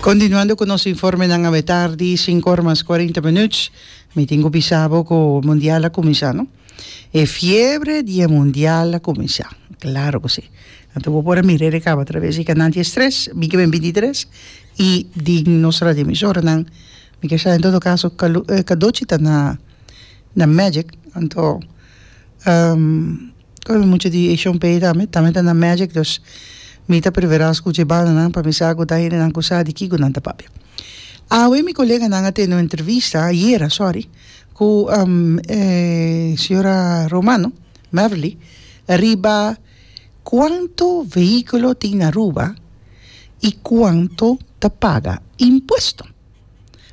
Continuando cu nos informenan awe tardi, sinku or mas cuarenta minuut. Mi tin cu bisa bo cu mundial a cuminsa, no? E fiebre di e mundial a cuminsa. Claro cu si. Anto bo por a mira e recaba traves y canan dies tres, bini ben binti tres y den nos radioemisoranan. Mi ke sa en todo caso Calu, eh, Cadochi ta na, na Magic, anto, ehm. Kos mi mucha di Asian pay tambe tambe ta na magic dus mi ta prefera skucha e bandanan pa mi sa ku ta hendenan ku sa di kiko nan ta papia awe mi koleganan a tene un entrevista ayera sori ku señora Romano Beverly riba kuantu vehíkulo tin na Aruba i kuantu ta paga impuesto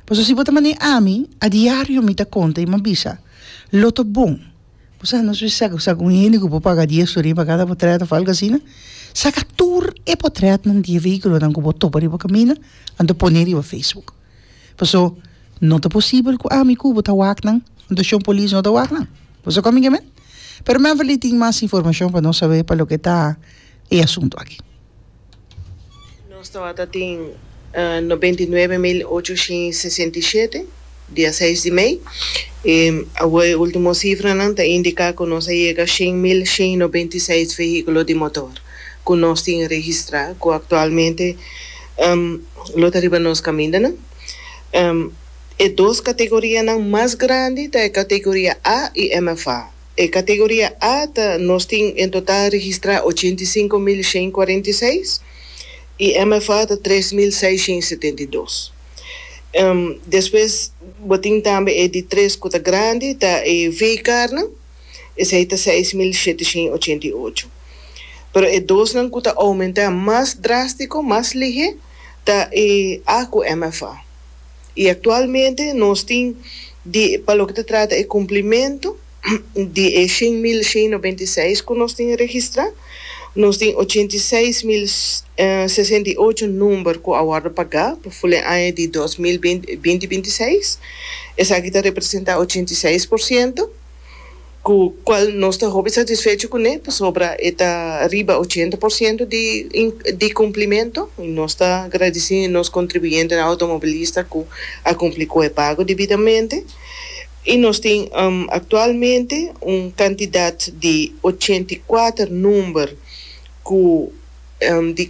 pasobra si bo ta manda ami a diario mi ta konta i mi a bisa lo ta bon. Bo sa nos bisa cu sa cu un hende cu bo paga dies tur riba cada potret of algo asina? Saca tur e potretnan di e vehiculonan cu bo topa riba camina anto pone riba Facebook. Paso no ta posibel cu ami cu bo ta wacnan anto Shon Polis no ta wacnan. Bo sa con mi ke men? Pero men a vali tin mas informacion pa nos sabe pa loke ta e asuntu aki. Nos tabata tin noventa i nuebe mil ocho shin sesenta i shete dia seis di mei, i awo e ultimo sifranan ta indiká ku nos a yega shen mil shin noventa i seis vehíkulo di motor ku nos tin registrá ku aktualmente lo ta riba nos kamindanan. E dos kategorianan mas grandi ta e kategoria A i MFA. E Categoria A ta nos tin en total registra ochenta i sinku mil shen kuarenta i seis i MFA ta tres mil seis shen setenta i dos. Despues bo tin tambe e di tres ku ta grandi ta e Veekarnan esei ta seis mil shete shen ochenta i ocho pero e dosnan ku ta oumentá mas drástiko mas lihé ta e A ku MFA. y actualmente nos tin di pa loke ta trata e cumplimento di e shen mil shen noventa y seis cu nos tin registra, nos tin ochenta y seis mil sesenta y ocho number cu a wordo paga pa ful e aña di dos mil binti binti seis, esaki ta representa ochenta y seis por ciento. cu cual nos ta hopi satisfecho cu ne pasobra e ta riba ochenta por ciento di di cumplimento y nos ta gradici nos contribuyentenan automobilista cu a cumpli cu e pago debidamente y nos tin actualmente un cantidad di ochenta y cuater number cu di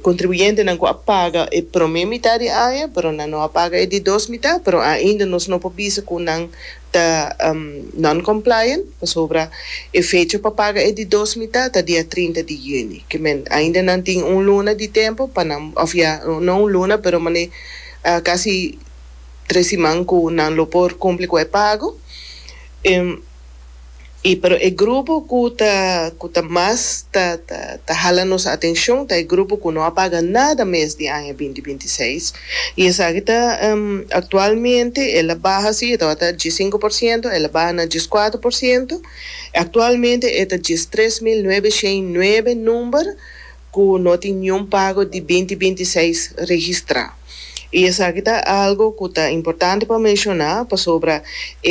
contribuyentenan cu a paga e prome mitad di aña pero nan no a paga e di dos mitad pero ainda nos no por bisa cu nan ta non-compliant, pasobra e fecha pa paga e di dos mitá ta dia trinta di yüni. Ke men, ainda nan tin un luna di tempu pa nan, òf ya, no un luna, pero manera kasi tres siman ku nan lo por kumpli ku e pago. Y pero e grupo cu ta cu ta mas ta ta ta hala nos atencion ta e grupo cu no a paga nada mes di aña binti binti seis y esaki ta actualmente el a baha si e tabata a dies sinku por ciento el a baha na dies cuatro por ciento actualmente e ta dies tres mil nuebe shei nuebe number ku no tin niun pago di binti binti seis registrá i esaki ta algu ku ta importante pa menshoná pasobra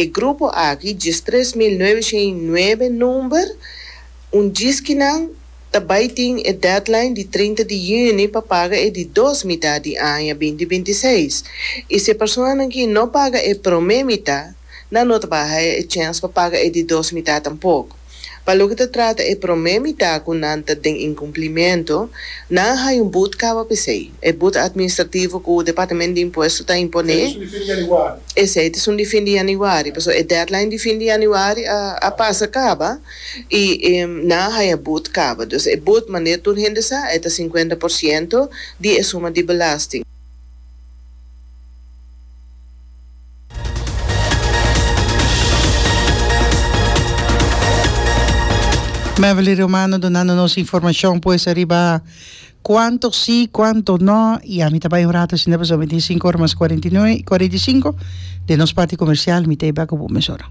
e grupo aki djis tres mil nuebe shen i nuebe number un djis ki nan ta bai tin e deadline di trinta di yüni pa paga e di dos mitá di aña binti binti seis i si e personanan ki no paga e promé mitá nan no ta baha e chèns pa paga e di dos mitá tampoko. Pa loke ta trata e promé mitá ku nan ta den inkumplimentu, nan a haña un but kaba p'esei. E but atministrativo ku Departamento di Impuesto ta imponé, esei ta esun di fin di yanüari, pasobra e deadline di fin di yanüari a pasa kaba i nan a haña but kaba. Dus e but, manera tur hende sa, e ta sinkuenta por siento di e suma di belasting. Beverly Romano dunando nos informacion pues ariba cuanto si cuanto no y ami ta bay un rato asina pasobra mi tin cinco ora mas cuarenta y nue cuarenta y cinco den nos parti comercial mi ta ey bak ku bo mesora.